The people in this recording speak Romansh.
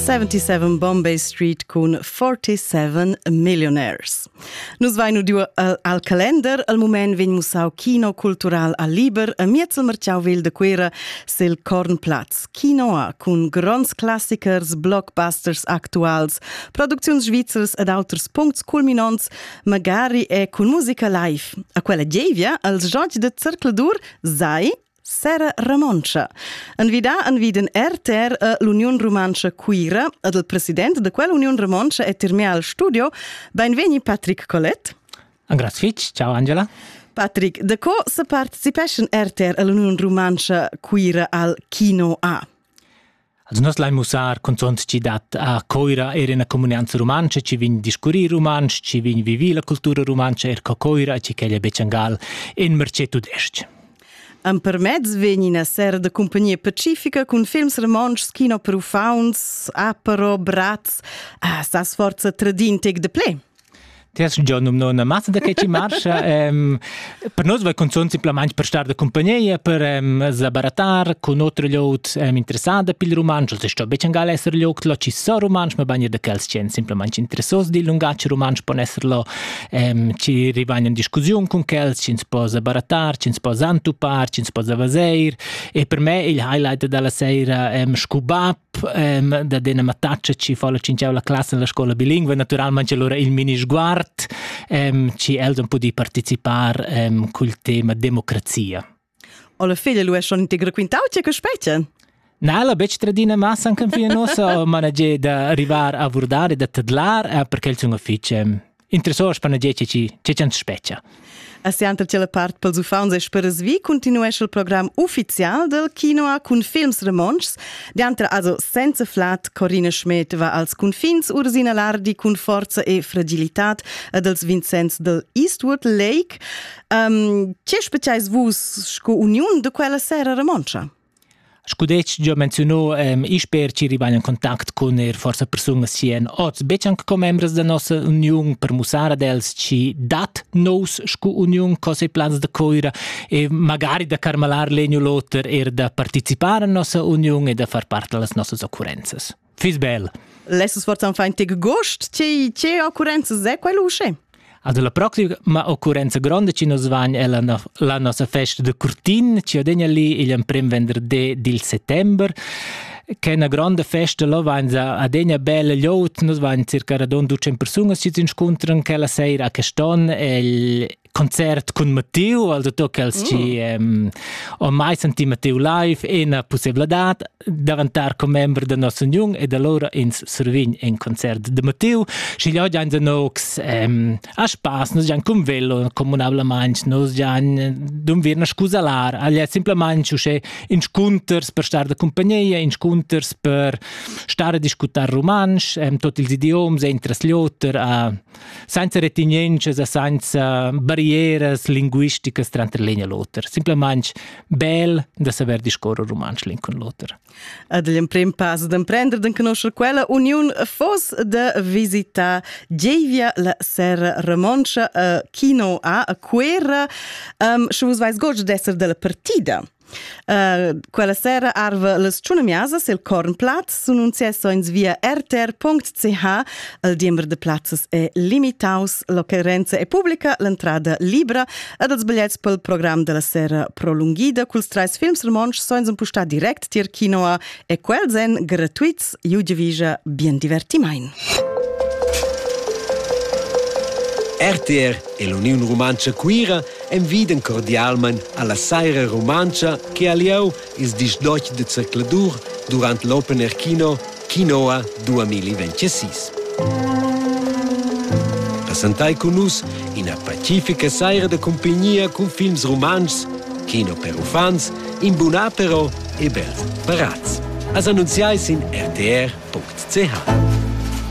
77 Bombay Street cun 47 millionaires. Nus vain udiu al calender, al moment vegn mussau kino cultural a Liber, a miez il Marciauvil de Cuera, sil Kornplatz. Kino A cun gronds classichers, blockbusters actuals, producziuns svizzers ed auters puncts culminonts, magari e cun musica live. A quella gievia als George de Zercladur sai Sera Romontscha. Envidà enviden RTR e l'Uniun Rumantscha Cuira ed il president da quell'Uniun Romontscha è termià al studio. Benvegni Patrick Collet. Angraz fitg, ciao Angela. Patrick, da co se participeschan RTR e l'Uniun Rumantscha Cuira al Kino A? Also nus lain mussar cunzunt chi dat a Coira eir üna comunianza rumantscha, chi vegn discurrir rumantsch, chi vegn vivir la cultura rumantscha eir co Coira e chi ch'ella è becciangal in mercé tudesc-ch. Empermezz vegn ina sera da compagnia pacifica cun films romontschs, kino per uffants, apero, bratz, a sa sforza tradin tec de ple. Ti has già numnà una massa da che ci marscha. um, per noi vai cunzont simplamain per star da compagnia, per um, zabaratar con otro liot um, interessada pil romansch, also sto be changal esser liog lo ci so romansch, ma bagner da quels ch'en simplamain interessos dil lungatg romansch pon esser lo um, ci rivain in discussiun con quels, ci po zabaratar, ci po zantupar, ci po zavazeir. E per me il highlight dalla seira um, scuba da dena mattatschia chi fa la cinchau la classa en la scola bilingua, naturalmente allora il mini sguard, ehm, ci els han pudi participar ehm, col tema democrazia. Alla figlia lui schon integro quintau che che specie? Na, la bec tradina massa anche fino nossa, ma na da arrivar a vurdare, da tadlar, perché il sun ufficio interessors per dir che che ch'ans spetgia. A sianta la part pels uffants e sperasvi continuescha il program ufficial del quinoa cun films romontschs. Diantra also senza flat Corina Schmidt va als confins Ursina Lardi cun forza e fragilitat ed els Vincenz del Eastwood Lake. Um, che speziais vus sco uniun de quella sera romontschia? Scu detg gia menziunò ehm isper chi rivain in contact cun eir forsa persunas chi èn oz betg anc commembras da nossa uniun per mussar ad els chi dat nous scu uniun cosa e plans da Coira e magari da carmalar l'egn u l'oter eir da participar a nossa uniun e da far part da las nossas occurrenzas. Fiss bel. Lesses fortan fein tig gost, che che occurrenza è quello usce? Also la proxima ma occurrenza gronda ci nos van è la, la nostra festa de Curtin, ci odegna lì il primo venerdì del settembre che è una grande festa, lo van adegna bella liot, nos van circa radon 200 persone si inscontrano quella sera a Caston e il concert cun Matteo, also tu che els mm. ci ehm, ho mai sentì Matteo live, è una possibilità davantar commember da nostra union e da lora ins survign in concert de Matteo, schi gli oggi in nox ehm, a spass, nos gian cum velo comunablement, nos gian dum vir na scusalar, agli è semplicemente usce inscunters per star da compagnia, inscunters per stare a discutar romansch, ehm, tot ils idioms, entras Lothar a senza retenientscha e senza barrieras linguisticas tranter l'egna e l'oter. Simplamain bel da saver discorrer rumantsch l'in cun l'oter. Ad l'emprim pass d'emprender d'en conoscer quella uniun fos de visita Gevia la Serra Remontscha a Kino a Quera. Um, sche vus vais gods d'esser della partida. Uh, quella sera arva las tschunamiasas il Kornplatz sun un sessoins via rtr.ch. Il diember de plazzas è limitaus, l'occorrenza è pubblica, l'entrada libra ed els bigliets pel program della sera prolunghida culs treis films romontsch soins un pustà direct tier kinoa E quels èn gratuits iu divisa bien divertimain. RTR e l'Uniun Rumantscha Cuira envidan cordialmain alla saira rumantscha che ha lieu ils dis d'och de zercladur durant l'Open Air Kino Quinoa 2026. Passentai cun nus ina pacifica saira de compagnia cun films rumantschs, kino per uffants In buna però e bel paraz. As annunziai sin rtr.ch.